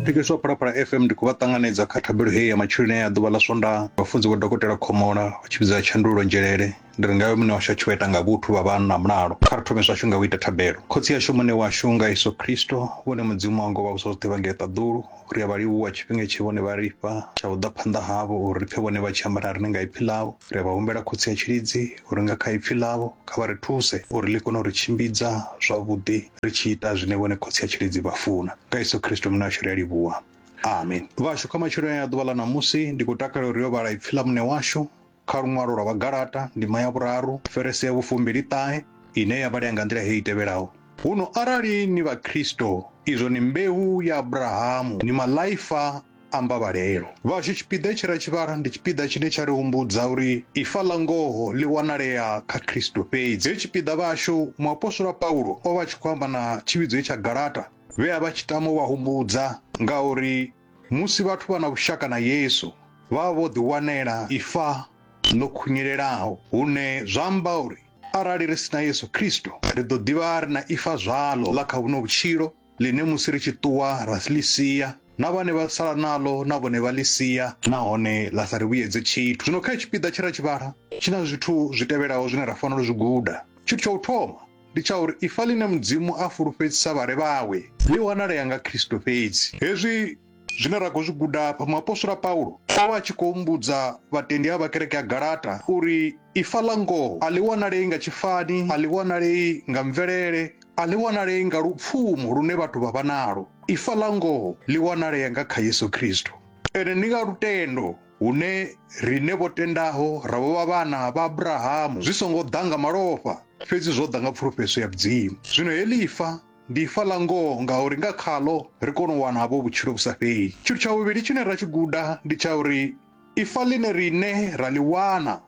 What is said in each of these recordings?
thetsheleswa phalaphala fm ndi khou vha ṱanganedza kha thabelo heyi ya matsheloni ya ḓuvha ḽa swondaha vhafunzi vho dokotela khomola vha tshi vhidza tshandulo nzhelele ndi ri ngayo muṋe washu a tshi vha ita nga vhuthu vha vha na mulalo kha ri thome zwashu nga u ita thabelo khotsi yashu muṋe washu nga yesu khristo vhone mudzimu wa ngo vha vhusa zwoṱhe vha ngei ṱaḓulu ri a vha livhuwa tshifhinga tshe vhone vha ri fha tsha u ḓa phanḓa havho uri ri pfe vhone vha tshi ambara riṋe nga ipfi ḽavho ri a vha humbela khotsi ya tshilidzi uri nga kha ipfi ḽavho kha vha ri thuse uri ḽi kone u ri tshimbidza zwavhuḓi ri tshi ita zwine vhone khotsi a tshilidzi vha funa nga yesu khristo muṋe washu ri a livhuwa amen vhashu kha matshelo ya ḓuvha ḽa ṋamusi ndi khou takalela uri yo vhala ipfi ḽa muṋe washu kha luṅwalo lwa vhagalata ndima ya vhuraru ferese ya vhufumbili ṱahe ine ya vhalea nga nḓila heyi tevhelaho huno arali ni vha khristo izwo ni mbeu ya abrahamu ni malaifa amba Vhalelo. Vhashu tshipiḓa tshi ra tshivhara ndi tshipiḓa tshine tsha ri humbudza uri ifa ḽa ngoho ḽi wanalea kha Kristo fhedzi. He tshipiḓa vhashu, muapostola Paulo o vha a tshi khou amba na tshivhidzo itsha Galata, vhe a vha tshi tama u vha humbudza nga uri musi vhathu vha na vhushaka na Yesu, vha vha vho ḓiwanela ifa ḽo khunyelelaho, hune zwa amba uri arali ri si na Yesu Kristo, ri ḓo ḓi vha ri na ifa zwaḽo ḽa kha vhuno vhutshilo. ḽine musi ri tshi ṱuwa ra ḽi sia na vhane vha sala naḽo na vhone vha ḽi sia nahone ḽa sa ri vhuyedze tshithu zwino kha i tshipiḓa tshe ra tshi vhala tshi na zwithu zwi tevhelaho zwine ra fanela u zwi guda tshithu tsha u thoma ndi tsha uri ifa ḽine mudzimu a fulufhedzisa vhale vhawe ḽi wanalea nga khristo fhedzi hezwi Zwine ra khou zwi guda afha, muapostola Paulo o vha a tshi khou humbudza vhatendi a vha kereke ya Galata uri ifa ḽa ngoho a ḽi wanalei nga tshifani, a ḽi wanalei nga mvelele, a ḽi wanalei nga lupfumo lune vhathu vha vha nalo. Ifa ḽa ngoho ḽi wanalea nga kha Yesu Kristo. Ene ndi nga lutendo hune riṋe vho tendaho ra vho vha vhana vha Abrahamu, zwi songo ḓa nga malofha, fhedzi zwo ḓa nga pfulufhedzo ya Mudzimu. Zwino heḽi ifa Ndi ifa ḽa ngoho ngauri nga khaḽo ri kona u wana havho vhutshilo vhu sa fheli. Tshithu tsha vhuvhili tshine ra tshi guda ndi tsha uri ifa ḽine riṋe ra ḽi wana,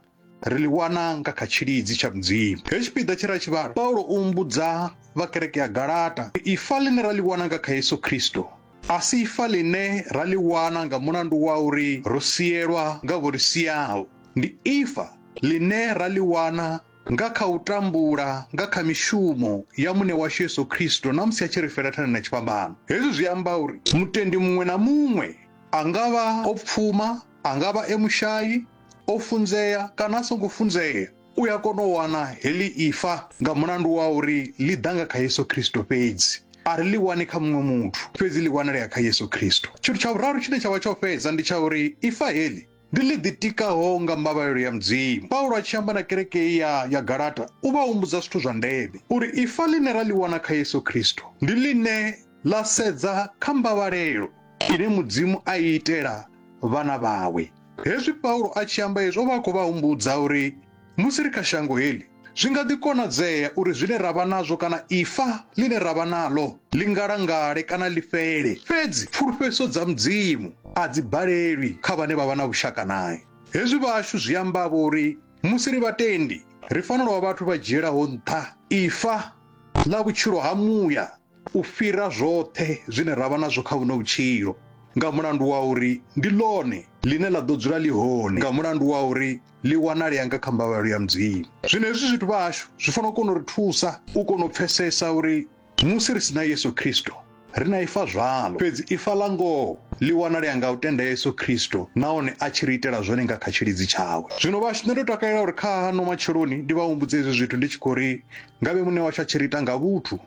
ri ḽi wana nga kha tshilidzi tsha Mudzimu. Hetshi tshipiḓa tshe ra tshi vhala, Paulo o humbudza vha kereke ya Galata uri ifa ḽine ra ḽi wana nga kha Yesu Kristo a si ifa ḽine ra ḽi wana nga mulandu wa uri ro sielwa nga vho ri siaho. Ndi ifa ḽine ra ḽi wana nga kha u tambula nga kha mishumo ya Muṋe washu Yesu Kristo na musi a tshi ri fela thanda na tshifhambano. Hezwi zwi amba uri mutendi muṅwe na muṅwe, a nga vha o pfuma, a nga vha e mushai, o funzea kana a songo funzea, u a kona u wana heḽi ifa nga mulandu wa uri ḽi ḓa nga kha Yesu Kristo fhedzi. A ri ḽi wani kha muṅwe muthu, fhedzi ḽi wanalea kha Yesu Kristo. Tshithu tsha vhuraru tshine tsha vha tsha u fhedza ndi tsha uri ifa heḽi Ndi ḽi ḓitikaho nga mbavhalelo ya Mudzimu. Paulo a tshi amba na kereke iyi ya, ya Galata, u vha humbudza zwithu zwa ndeme, uri ifa ḽine ra ḽi wana kha Yesu Kristo ndi ḽine ḽa sedza kha mbavhalelo ine Mudzimu a i itela vhana vhawe. Hezwi Paulo a tshi amba hezwi, o vha a khou vha humbudza uri Musi ri kha shango heḽi, zwi nga ḓi konadzea uri zwine ra vha nazwo kana ifa ḽine ra vha naḽo ḽi ngalangale kana ḽi fhele. Fhedzi pfulufhedziso dza Mudzimu a dzi balelwi kha vhane vha vha na vhushaka nae. Hezwi vhashu zwi amba-vho uri musi ri vhatendi, ri fanela u vha vhathu vha dzhielaho nṱha ifa ḽa vhutshilo ha muya. u fhira zwoṱhe zwine ra vha nazwo kha vhuno vhutshilo nga mulandu wa uri ndi ḽone ḽine ḽa ḓo dzula ḽi hone nga mulandu wa uri ḽi wanalea nga kha mbavhalo ya mudzimu zwino hezwi zwithu vha hashu zwi fanela u kona u ri thusa u kona u pfesesa uri musi ri si na yesu khristo ri na ifa zwalo fhedzi ifa ḽa ngoho ḽi wanalea nga u tenda yesu khristo nahone a tshi ri itela zwone nga kha tshilidzi tshawe zwino vhashu nṋe ndo takalela uri kha hano matsheloni ndi vha humbudze hezwi zwithu ndi tshi khou ri ngavhe muṋe washu a tshi ri ita nga vhuthu